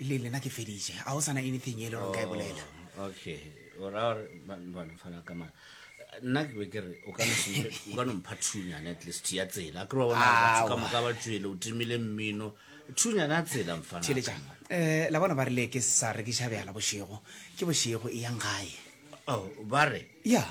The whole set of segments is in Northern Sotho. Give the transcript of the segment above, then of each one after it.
le lena ke feditše a o sana anything e le gore nka e oh, bolela okay o ra gore bana fana ka mana nna ke be ke re o ka nompha thunyane at least ya tsela ke ba bonabatho ka moka ba tswele o timile mmino thunyane a tsela mfanatheletsa um eh, la bona ba rile ke sa rekiša bjala bošego ke bošego e yang gae oh, ba re ya yeah.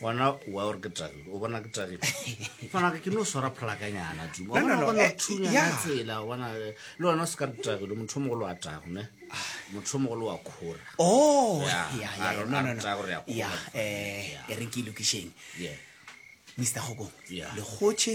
gona wa gore ke tagile o bona ke tagile fanaka ke no swara phalakanyana tumatsela eh, bona eh, le wena o se ka re tagile motho o mogolo wa tago ne motho o mogolo wa kgora oh, eh, e re ke lokišeng mr gokong lekgotšhe